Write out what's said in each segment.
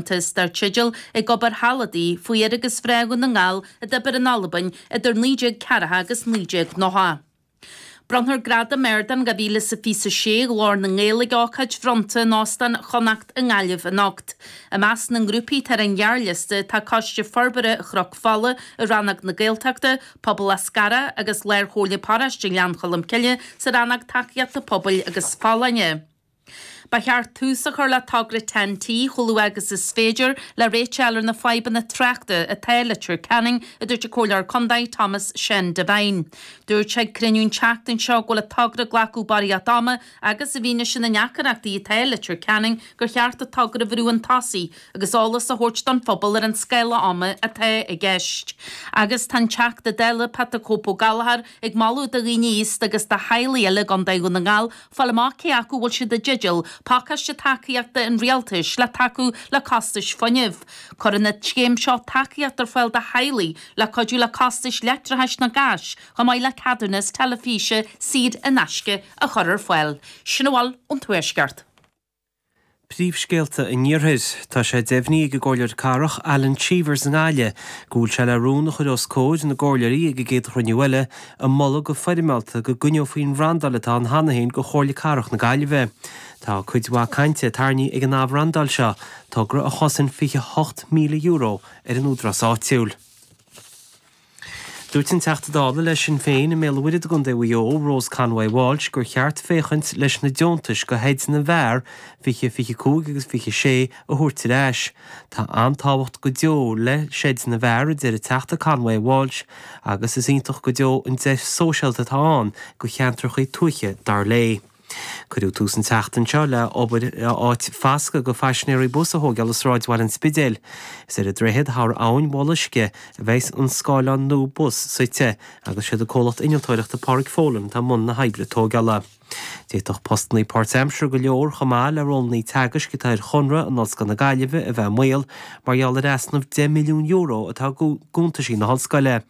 dar teideal Ag Obair Thall Adaí faoi fhir agus mhná Dhún na nGall a d'oibir in Albain idir 1940 agus 1990. Bronnfar Gradam Ardáin 2026 Ghlór na nGael ag ócáid bhronnta in Óstán Chonnacht i nGaillimh anocht. I measc na ngrúpaí atá ar an ghearrliosta tá Coiste Forbartha Chnoc Fola i Rannóg na Gaeltachta, Pobal Eascarrach agus Lár-Chomhairle Paróiste Ghleann Cholm Cille sa Rannóg Tacaíochta Pobail agus Folláine. Ba cheart tús a chur le togra Ten-T chomh luath agus is féidir, le réiteach a fháil ar na fadhbanna tráchta atá i Leitir Ceanainn, a dúirt an Comhairleoir Condae Tomás Seán Devine. Dúirt sé ag cruinniú an tseachtain seo go bhfuil an togra ag glacadh barraíocht ama agus i bhfianaise na ndeacaireachtaí atá i Leitir Ceanainn gur cheart an togra a bhrú 'un tosaigh agus eolas a thabhairt don phobal ar an scála ama atá i gceist. Agus tá an Teachta Dála Pat the Cope Ó Gallagher ag moladh do dhaoine aosta agus do theaghlaigh eile i gCondae Dhún na nGall, Fáil amach cé acu bhfuil siad i dteideal pacáiste tacaíochta an Rialtais le tacú le costais fuinnimh. Cuireann an scéim seo tacaíocht ar fáil do theaghlaigh le cuidiú le costais leictreachais nó gáis chomh maith le ceadúnas teilifíse saor in aisce a chur ar fáil. Sin a bhfuil ón Tuaisceart. Príomhscéalta an Iarthair. Tá sé deimhnithe ag an gComhairleoir Cathrach, Alan Cheevers i nGaillimh, go bhfuil sé le rún a chur os comhair na gComhairleoirí ag an gcéad chruinniú eile, ag moladh go foirmeálta go gcoinneofaí an bhrandáil atá ann cheana féin go Chomhairle Cathrach na Gaillimhe. Tá cuid mhaith cainte tarraingthe ag an athbhrandáil seo, togra a chosain €28,000, ar an Údarás Áitiúil. Dúirt an Teachta Dála le Sinn Féin i mBéal an Mhuirthead i gContae Mhaigh Eo, Rose Conway-Walsh gur cheart féachaint leis na deontais go sheid na bhfear 2025 agus 26 a thabhairt ar ais. Tá an-tábhacht go deo le seid na bhfear, a deir an Teachta Conway-Walsh agus is iontach go deo an deis sóisialta atá ann go cheantrachaí tuaithe, dar léi. Cuireadh tús an tseachtain seo le obair ar áit fhoscaidh go phaisinéirí Bus a thógáil i sráidbhaile an Spidéil. Is ar an droichead thar Abhainn Bhoth Loiscthe a bheidhs an scáthlán nua bus suite agus is iad an comhlacht innealtóireachta Pádraig Folan atá i mbun na hoibre tógála. D'fhéadfadh postannaí páirtaimseartha chomh maith le rólannaí teagaisc atá ar chonradh in Ollscoil na Gaillimhe, a bheith i mbaol mar gheall ar easnamh 10 milliún euro atá i gcuntaisí na hollscoile.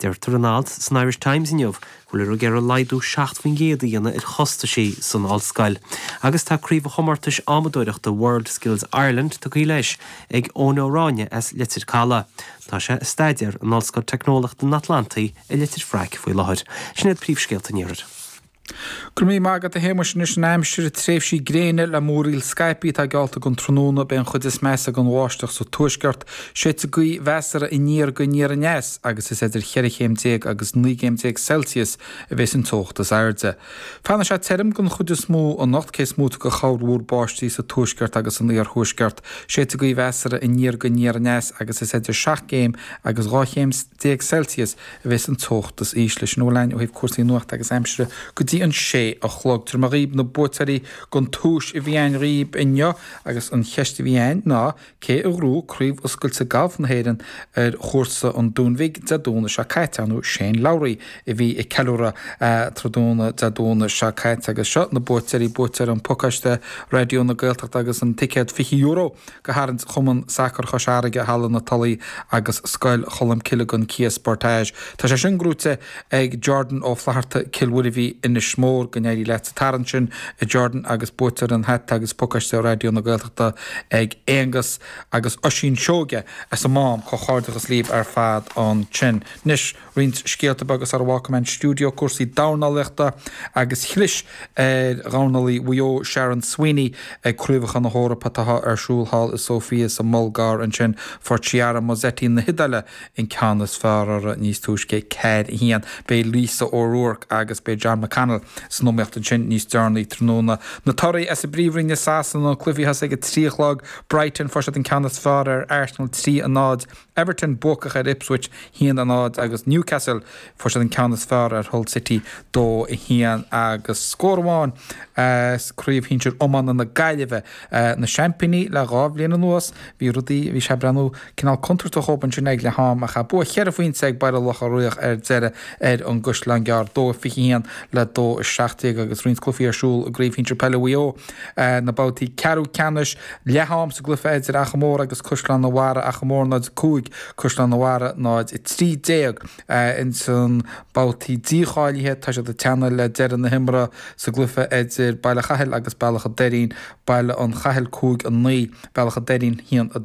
Deirtear in alt san Irish Times inniu go bhfuiltear ag iarraidh laghdú 7 faoin gcéad a dhéanamh ar chostaisí san Ollscoil agus tá Craobh an Chomórtais Adhmadóireachta World Skills Ireland tugtha leis ag Eoin Ó Ráinne as Leitir Caladh. Tá sé ag staidéar in Ollscoil Teicneolaíochta an Atlantaigh i Leitir Fraic faoi láthair. Sin iad príomhscéalta an Iarthair. Go raibh míle maith agat a Shéamuis. Anois an aimsir, tréimhsí gréine le múraíl scaipthe atá geallta don tráthnóna. Beidh an chuid is measa den bháisteach sa tuaisceart Séidfidh gaoth mheasartha aniar go aniar aneas agus is idir cheithre chéim déag agus naoi gcéim déag Celsius a bhéas an teocht is airde. Fanfaidh sé tirim den chuid is mó anocht cé is móite de chorrmhúr báistí sa tuaisceart agus san iarthuaisceart. Séidfidh gaoth mheasartha aniar go aniar aneas agus is idir seacht gcéim agus dhá chéim déag Celsius a bhéas an teocht is ísle. Sin a bhfuil againn ó thaobh cúrsaí nuachta agus aimsire go dtí an sé a chlog. Tabharfaidh mé dhaoibh na buaiteoirí den tomhais a bhí againn daoibh inniu agus an cheist a bhí againn ná Cé a ghnóthaigh craobh oscailte Gailf na hÉireann ar chúrsa an Dúin Bhig Dé Domhnaigh seo caite? Ar ndóigh Shane Lowry, a bhí ag ceiliúradh tráthnóna Dé Domhnaigh seo caite agus seo na buaiteoirí buaiteoir an pacáiste Raidió na Gaeltachta agus an ticéad €20 go tharraingt Chumann Sacair Chois Fharraige, Halla na Tulaí agus Scoil Cholm Cille gon Kia Sportage? Tá sé sin gnóthaithe Ag Jordan Ó Flatharta, Cill Mhuirbhigh, Inis Mór, go n-éirí leat sa tarraingt sin, a Jordan, agus buaiteoir an hata agus pacáiste Raidió na Gaeltachta ag Aonghus agus Oisín Seoige as an Mám, comhchairdeachas libh ar fad ansin. Anois, roinnt scéalta beaga sara bhfágfaidh mé an stiúideo, cúrsaí dornálaíochta agus chlis ar dhornálaí Mhaigh Eo, Sharon Sweeney, ag Craobhacha na hEorpa atá ar siúl thall i Sóifia sa mBulgáir ansin, fuair Chiara Mozzetti na hIodáile, an ceann is fearr uirthi níos túisce, ceathair a haon. Beidh Lisa O'Rourke agus beidh John McConnell san iomaíocht ansin níos deireanaí tráthnóna. Na torthaí as an bPríomhroinn i Sasana, na cluichí a thosaigh ag trí a chlog. Brighton, fuair siad an ceann is fearr ar Arsenal trí a náid. Everton, buacach ar Ipswich haon a náid agus Newcastle, fuair siad an ceann is fearr ar Hull City dó a haon agus scór amháin as Craobh Shinsir Iomána na Gaillimhe. na seaimpíní le dhá bhliain anuas. Bhí rudaí, bhí sé ag breathnú cineál contúirteach dhób ansin ag leath am ach bua cheithre phointe ag Baile Locha Riach ar deireadh ar an gCaisleán Gearr, 2-21 le 2-17 agus roinnt cluichí ar siúl i gCraobh Shinsir Peile Mhaigh Eo, na babhtaí ceathrú ceannais. Leath am sa gcluiche idir Achadh Mór agus Caisleán a' Bharraigh, Achadh Mór 0-5 Caisleán a' Bharraigh 0-13. Ansin babhtaí dícháilithe, tá siad ag teannadh le deireadh na himeartha sa gcluiche idir Baile Chathail agus Bealach a' Doirín, Baile an Chathail 5, 9, Bealach a' Doirín 1, 2.